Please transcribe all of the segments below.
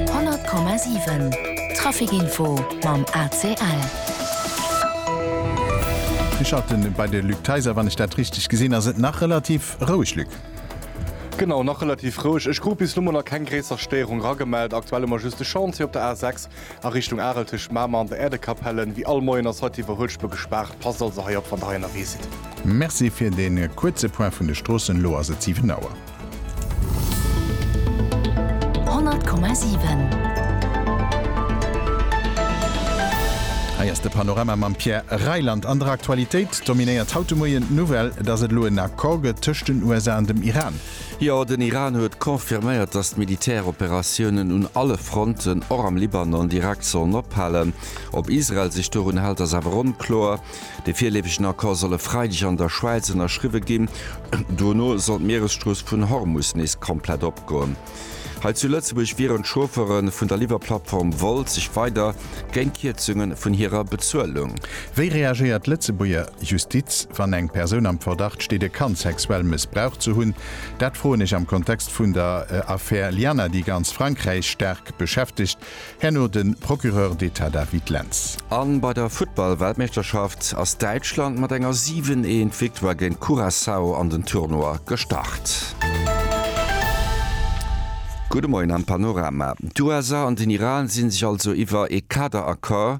100,7 Trafic info mam ACL. Mir schalte bei de Luc Theiser. Wann ech dat richteg gesinn, ass et nach relativ roueg, Luc? Genau, nach relativ roueg. Ech krut bis elo mol nach keng gréisser Stéierung ragemellt. Aktuell hu mer just de Chantier op der A6 a Richtung Arel tëscht Mamer an der Äerdekapelle. Wéi all Moien ass haut d'Iwwerhuelspur gespaart. Passt also hei op, wann der hei ënnerwee sidd. Merci fir dee kuerze Point vun de Stroossen. Elo ass et 7 Auer. Hei ass de Panorama mam Pierre Reyland. An der Aktualitéit dominéiert haut de Moien d'Nouvelle, datt et elo en Accord gëtt tëscht den USA an dem Iran. Jo, den Iran huet confirméiert, datt d'Militäroperatiounen un alle Fronten, och am Libanon, direkt sollen ophalen. Ob Israel sech dorun hält, ass awer onkloer. De virleefegen Accord soll e Freideg an der Schwäiz ënnerschriwwe ginn. Dono soll d'Mieresstrooss vun Hormus nees komplett opgoen. Hei zu Lëtzebuerg wieren d'Chauffere vun der Liwwerplattform Wolt sech weider géint Kierzunge vun hirer Bezuelung. Wéi reagéiert d'Lëtzebuerger Justiz, wann eng Persoun am Verdacht steet, e Kand sexuell mëssbraucht ze hunn? Dat froen ech am Kontext vun der Affär Lianna, déi ganz Frankräich staark beschäftegt. Herno de Procureur d'Etat David Lentz. A bei der Futtball-Weltmeeschterschaft ass Däitschland mat enger 7, eent Victoire géint Curaçao an den Tournoi gestart. Gudde Moien am Panorama. D'USA an den Iran si sech also iwwer ee Kaderaccord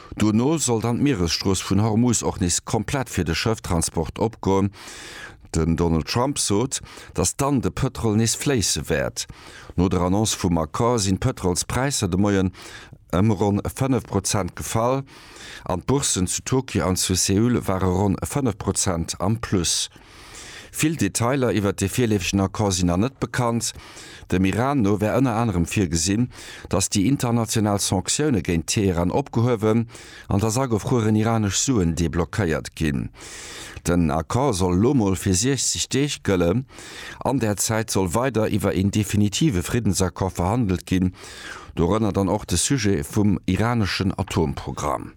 Duerno soll dann d'Mieresstrooss vun Hormuz och nees komplett fir de Schëfftransport opgoen. Den Donald Trump sot, datt dann de Pëtrol nees fléisse wäert. No der Annonce vum Accord sinn d'Pëtrolspräisser de Moien ëm ronn 5 Prozent gefall an d'Bourssen zu Tokio an zu Seoul ware ronn 5 Prozent am Plus. Vill Detailer iwwert dee virleefegen Accord sinn nach net bekannt. Dem Iran no wär ënner anerem virgesinn, datt déi international Sanktioune géint Teheran opgehuewen an datt agefrueren iranesch Suen deblockéiert ginn. Den Accord soll elo mol fir 60 Deeg gëllen. An där Zäit soll weider iwwer een definitive Friddensaccord verhandelt ginn, dorënner dann och de Sujet vum iraneschen Atomprogramm.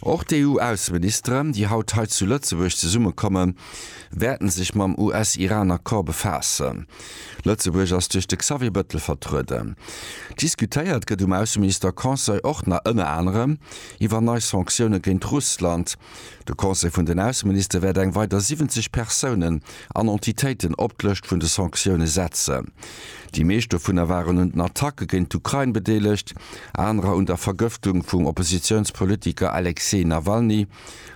Och d'EU-Ausseministere, déi haut hei zu Lëtzebuerg zesummekommen, wäerten sech mam US-Iran-Accord befaassen. Lëtzebuerg ass duerch de Xavier Bettel vertrueden. Diskutéiert gëtt um Ausseminister-Conseil och nach ënner anerem iwwer nei Sanktioune géint Russland. De Conseil vun den Ausseministere wäert eng weider 70 Persounen an Entitéiten op d'Lëscht vun de Sanktioune setzen. Déi meescht dovunner waren un den Attacke géint d'Ukrain bedeelegt, anerer un der Vergëftung vum Oppositiounspolitiker Alexej Nawalny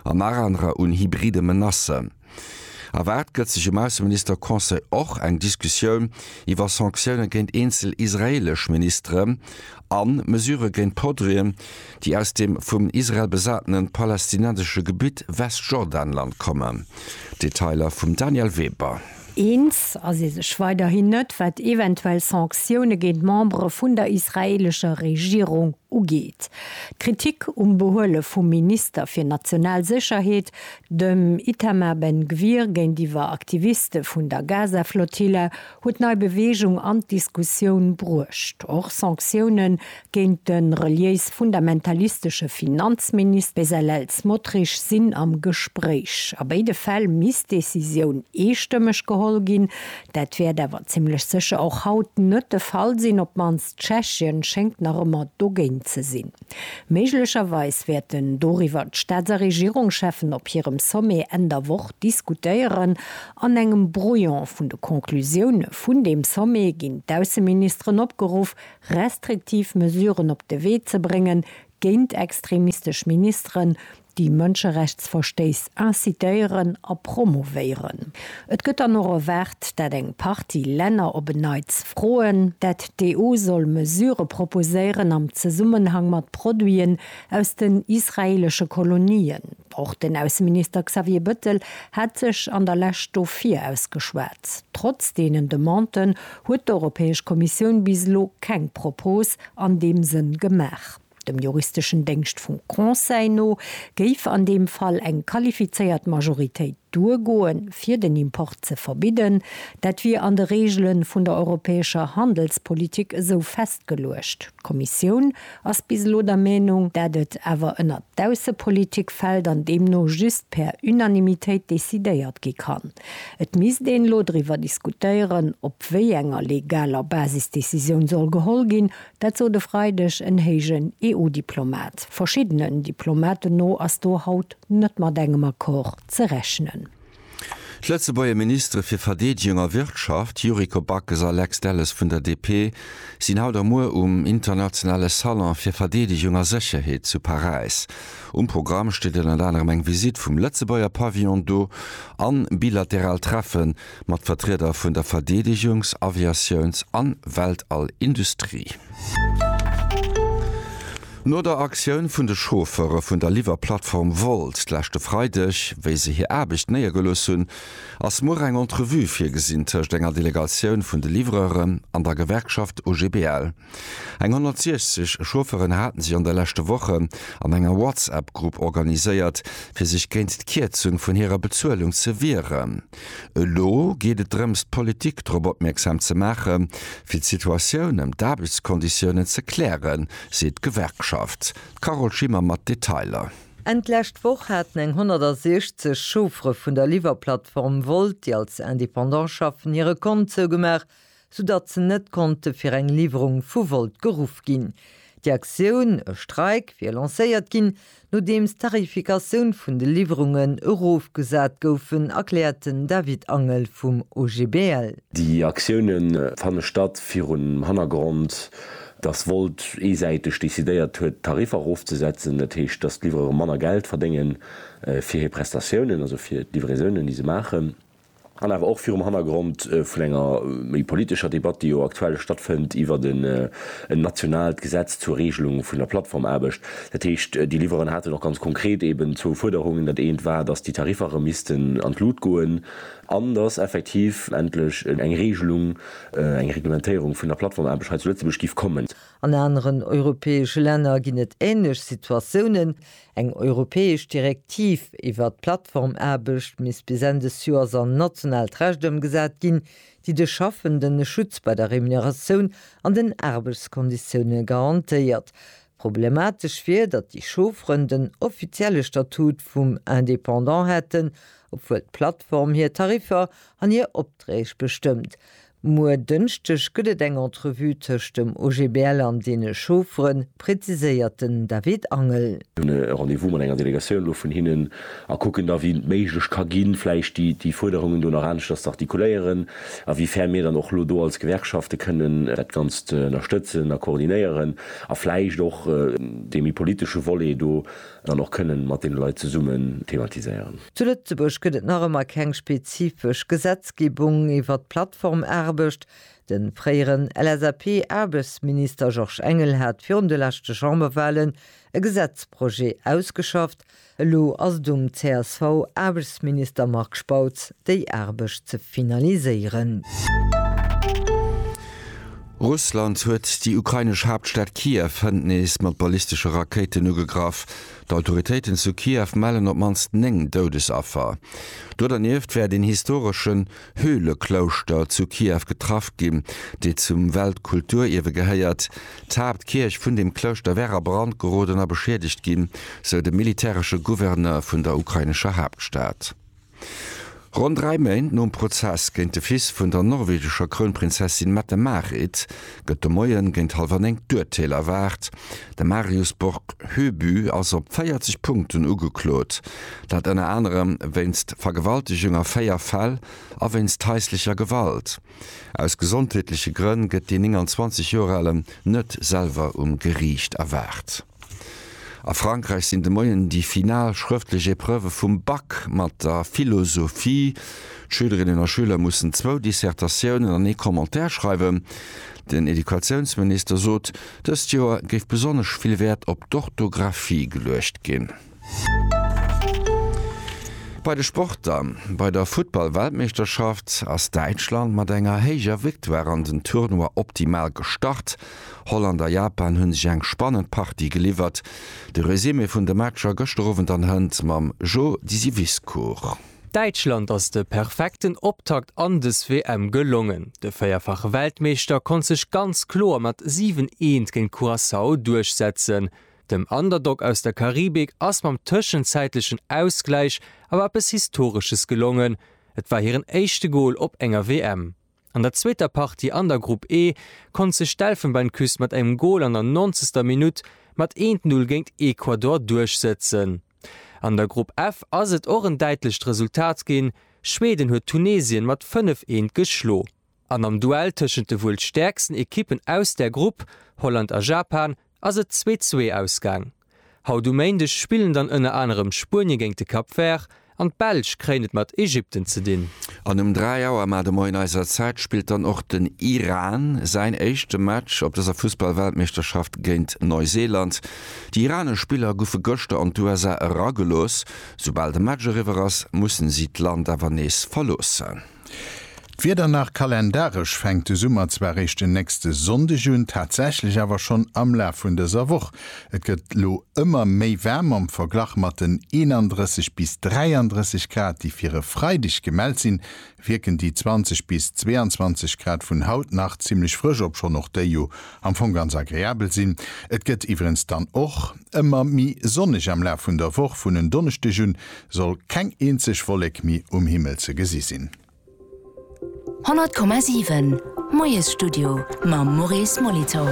an nach anerer un hybride Menacen. Erwaart gëtt sech um Ausseminister-Conseil och eng Diskussioun iwwer Sanktioune géint eenzel israeelesch Ministeren a Mesurë géint Podrien, déi aus dem vum Israel besatene palästinensesche Gebitt Westjordanland kommen. Detailer vum Daniel Weber. Eens ass ee sech weiderhin net, wat eventuell Sanktioune géint Membere vun der israeelescher Regierung ugeet. D'Kritik um Behuele vum Minister fir national Sécherheet, dem Itamar Ben Gvir, géintiwwer Aktiviste vun der Gaza-Flotilla huet nei Beweegung an d'Diskussioun bruecht. Och Sanktioune géint de reliéis-fundamentalistesche Finanzminister Bezalel Smotrich sinn am Gespréich. A béide Fäll misst d'Decisioun eestëmmeg geholl ginn. Dat wäert awer zimmlech sécher och haut net de Fall sinn, op d'mannst Tschechien schéngt nach ëmmer dogéint ze sinn. Méiglecherweis wäerten doriwwer d'Staats a Regierungscheffen op hirem Sommet Enn der Woch diskutéieren. An engem Brouillon vun de Conclusioune vun deem Sommet ginn d'Ausseministeren opgeruff, restriktiv Mesuren op de Wee ze bréngen, géint extremistesch Ministeren, déi Mënscherechtsverstéiss incitéieren a promouvéieren. Et gëtt dann och erwaart, dat eng Partie Länner op en Neits froen, dat d'EU soll Mesurë proposéieren am Zesummenhang mat Produiten aus den israeelesche Kolonien. Och den Ausseminister Xavier Bëttel hat sech an der Lescht dofir ausgeschwat. Trotz deenen Demanden huet d'Europäesch Kommissioun bis elo keng Propos an deem Sënn gemaach. Dem juristeschen Déngscht vum Conseil no géif an deem Fall eng qualifizéiert Majoritéit Duergoen, fir den Import ze verbidden, dat wier an de Reegele vun der europäescher Handelspolitik esou festgeluecht. D'Kommissioun ass bis elo der Meenung, dat et awer ënner d'Aussepolitik fält an deemno just per Unanimitéit decidéiert gi kann. Et misst een elo driwwer diskutéieren, op wéi enger legaler Basis d'Decisioun soll geholl ginn, Dat sot e Freideg en héijen EU-Diplomat. Verschiddenen Diplomaten no ass do haut net mat engem Accord ze rechnen. D'Lëtzebuerger Ministere fir Verdeedegung a Wirtschaft, Yuriko Backes a Lex Delles vun der DP, sinn haut a muer um internationale Salon fir Verdeedegung a Sécherheet zu Paräis. Um Programm steet ënnert anerem eng Visitt vum Lëtzebuerger Pavillon do an bilateral Treffen mat Vertrieder vun der Verdeedegungs-, Aviatiouns an Weltall-Industrie. No der Aktioun vun de Chauffeure vun der Liwwerplattform Wolt d'leschte Freideg, wéi se hir Aarbecht néiergelooss hunn, ass muer eng Entrevue virgesinn tëscht enger Delegatioun vun de Livreuren an der Gewerkschaft OGBL. Eng 160 Chaufferen haten sech an de leschte Wochen an enger WhatsApp-Grupp organiséiert, fir sech géint d'Kierzung vun hirer Bezuelung ze wieren. Elo geet et drëms, d'Politik drop opmierksam ze maachen, fir d'Situatioun ëm d'Aarbechtskonditiounen ze klären, seet d'Gewerkschaft. D'Carole Schimmer mat Detailer. Enn d'lescht Woch haten eng 160 Chauffere vun der Liwwerplattform Wolt, déi als Independant schaffen, hire Kont zougemaach, soudatt se net konnte fir eng Liwwerung vu Volt geruff ginn. Déi Aktioun, e Streik, wier lancéiert ginn, nodeems d'Tarifikatioun vun de Liwwerungen erofgesat goufen, erkläert den David Angel vum OGBL. Déi Aktioune fanne statt virum Hannergrond, datt Volt eesäiteg decidéiert huet, d'Tariffer erofzesetzen. Dat heescht, datt d'Livreuren manner Geld verdéngen fir hir Prestatiounen, also fir d'Livraisonen, déi se maachen. an awer och virum Hannergrond vun enger méi politescher Debatt, déi jo aktuell stattfënnt iwwert en nationaalt Gesetz zur Regelung vun der Plattformaarbecht. Dat heescht, déi Liwweren haten och ganz konkret eeben zwou Fuerderungen. Dat eent war, dass déi Tariffer erëm missten an d'Lut goen an dass effektiv endlech eng Regelung, eng Reglementéierung vun der Plattformaarbecht hei zu Lëtzebuerg géif kommen. An aneren europäesche Länner ginn et änlech Situatiounen. Eng europäesch Direktiv iwwert d'Plattformaarbecht misst bis Enn des Joers an nationaalt Recht ëmgesat ginn, déi de Schaffenden e Schutz bei der Remuneratioun an den Aarbechtskonditioune garantéiert. Problematesch wier, datt déi Chaufferen den offizielle Statut vum Indépendant hätten, obwuel d'Plattform hir Tariffer an hir Opträg bestëmmt. Muer Dënschdeg gëtt et eng Entrevue tëscht dem OGBL an deene Chauffere, präziséiert den David Angel. Mir hunn e Rendez-vous mat enger Delegatioun elo vun hinnen a kucken da wéi et méiglech ka ginn, vläicht déi Fuerderungen do nach aneschters ze artikuléieren, a wéi fern mir dann och elo do als Gewerkschafte kënnen dat Ganzt ënnerstëtzen a koordinéieren a vläicht och dee méi politesche Volet do dann och kënnen mat deene Leit zesummen thematiséieren. Zu Lëtzebuerg gëtt et nach ëmmer keng spezifesch Gesetzgebung iwwert d'Plattformaarbecht. De fréieren LSAP-Aarbechtsminister Georges Engel hat virun de leschte Chamberwahlen e Gesetzprojet ausgeschafft. Elo ass et um CSV-Aarbechtsminister Marc Spautz, déi Aarbecht ze finaliséieren. Russland huet déi ukrainesch Haaptstad Kiew hënt nees mat ballistesche Rakéiten ugegraff. D'Autoritéiten zu Kiew mellen op d'mannst 9 Doudesaffer. Do dernieft wär den historeschen Höhleklouschter zu Kiew getraff ginn, dee zum Weltkulturierwe gehéiert. D'Haaptkierch vun dem Klouschter wär a Brand geroden a beschiedegt ginn, sou de militäresche Gouverneur vun der ukrainescher Haaptstad. Ronn dräi Méint nom Prozess géint de Fils vun der norwegescher Krounprinzessin Mette-Marit gëtt de Moien géint hallwer 9 d'Urteel erwaart. De Marius Borg Høby ass op 40 Punkten ugeklot, dat ënner anerem wéinst Vergewaltegung a 4 Fäll a wéinst haislecher Gewalt. Aus gesondheetleche Grënn gëtt dee 29 Joer Alen net selwer um Geriicht erwaart. A Frankräich sinn de Moien déi final schrëftlech Epreuve vum Bac mat der Philosophie. D'Schülerinnen a Schüler mussen zwou Dissertatiounen an ee Commentaire schreiwen. Den Educatiounsminister sot, dëst Joer géif besonnesch vill Wäert op d'Orthographie geluecht ginn. Bei de Sporter, Bei der Futtball-Weltmeeschterschaft ass Däitschland mat enger héijer Victoire an den Tournoi optimal gestart. Holland a Japan hu sech eng spannend Partie geliwwert. De Resumé vun de Matcher gëschter Owend an hënt mam Jo Disiviscourt. Däitschland ass de perfekten Optakt an des WM gelongen. De véierfache Weltmeeschter konnt sech ganz kloer mat 7, Eent géint Curaçao duerchsetzen. Dem Underdog aus der Karibik ass mam tëschenzäitlechen Ausgläich awer eppes Historesches gelongen, et war hiren éischte Gol op enger WM. An der zweeter Partie an der Grupp E konnt sech d'Elfenbeinküst mat engem Gol an der nonzegster Minutt mat 1-0 géint Ecuador duerchsëtzen. An der Grupp F ass et och en däitlecht Resultat ginn, Schweden huet Tunesien mat 5, 1 geschlo. An am Duell tëschent de wuel stäerksten Ekippen aus där Grupp, Holland a Japan, ass et 2-2 ausgaang. Haut um Méindeg spillen dann ënner anerem Spuenie géint de Cap Vert an d'Belsch kréien et mat Ägypten ze dinn. An um 3 Auer mar de Moien eiser Zäit spillt dann och den Iran säin éischte Match op dëser Fussballweltmeeschterschaft géint Neuseeland. Déi iranesch Spiller guffe gëschter an d'USA eragelooss. Soubal de Match eriwwer ass, mussen si d'Land awer nees verloossen. D'Wieder nach, Kalendaresch fänkt de Summer zwar eréischt den nächste Sonndeg un, tatsächlech awer schonn am Laf vun dëser Woch. Et gëtt elo ëmmer méi waarm am Verglach mat den 31 bis 33 Grad, déi fir e Freideg gemellt sinn, wierken déi 20 bis 22 Grad vun haut nach zimmlech frësch, obschonn och déi jo am Fong ganz agreabel sinn. Et gëtt iwwerens dann och ëmmer méi sonneg am Laf vun der Woch, vun en Donneschdeg un soll keng eenzeg Wollek mi um Himmel ze gesi sinn. 100,7 Moiesstudio mam Maurice Molitor.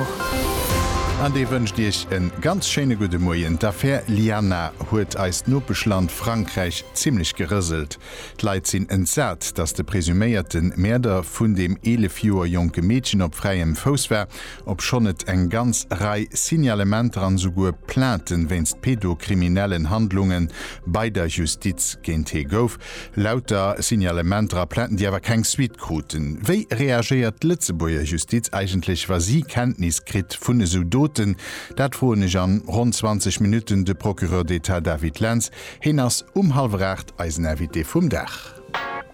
An dee wënscht Iech en ganz schéine gudde Moien. D'Affär Lianna huet eist Nopeschland Frankräich zimmlech gerëselt. D'Leit sinn entsat, datt de presuméierte Mäerder vun deem 11 Joer jonke Meedchen op fräiem Fouss war obschonn et eng ganz Rei Signalementer an esouguer Plainten wéinst pedokriminellen Handlungen bei der Justiz géint hee gouf. Lauter Signalementer a Plainten, déi awer keng Suite kruten. Wéi reagéiert d'Lëtzebuerger Justiz eigentlech, wa si Kenntnis kritt vun esou Doten? Dat froen ech an ronn 20 Minutten de Procureur d'Etat David Lentz. Heen ass um hallwer 8 eisen Invité vum Dag.